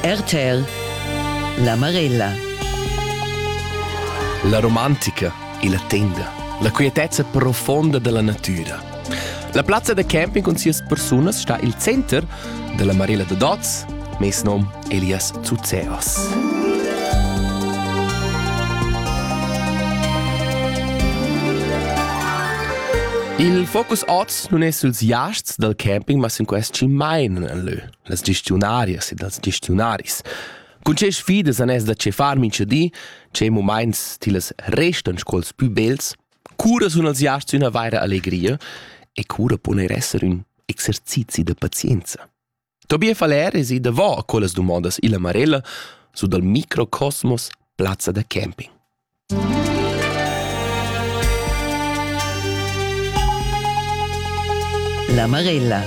RTL La Marella La romantica e la tenda, la quietezza profonda della natura. La plazza da camping con sias persunas sta il center della Marella de Dots, mes nom Elias Zuzeos. Il focus oz nun es süls jasts dal camping, ma sün quest chi maina nel lö, las gestiunarias ed els gestiunaris. Cun che sfidas han es da cefar mincha di, che mumaints tillas restan sco'ls pü bels? Cura sun els jasts üna vaira allegria e cura pon eir esser ün exercizi da pazienza? Tobias Valer es ì davò a quellas dumondas illa Marella su dal microcosmos Plazza da camping. La Marella.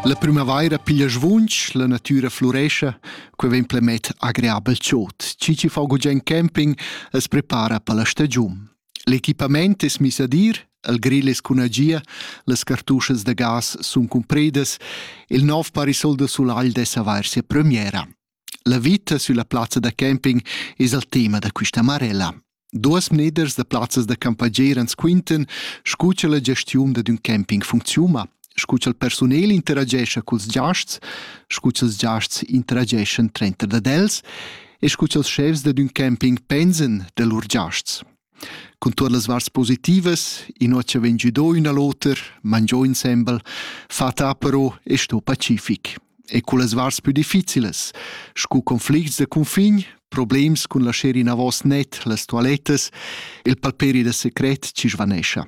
La primavaira piglia svunch, la natüra flurescia, que vegn plemet agreabel chod. Ci ci fa gugent camping es prepara per la stagiun. L'equipament es miss ad ir, il grill es cun agia, las cartuschas da gas sun cumpridas, il nov parasol da sulagl dess avair sia premiera. La vita sülla plazza da camping es il tema da quista marella. Duos mneders da plazzas da campagner ans quintan scu cha la gestiun dad ün camping funcziuna. scu cha'l persunel interagescha culs giasts, scu cha'ls giasts interageschan trenter dad els e scu cha'ls schefs dad ün camping pensan da lur giasts. Cun tuot las varts positivas, inua cha vegn giudò ün a l'oter, mangiò insembel, fata però e sto pacific. E cullas varts pü difficilas, scu conflicts da cunfin, problems cun lascher inavos net las toalettas, il palperi da secret ci svanescha.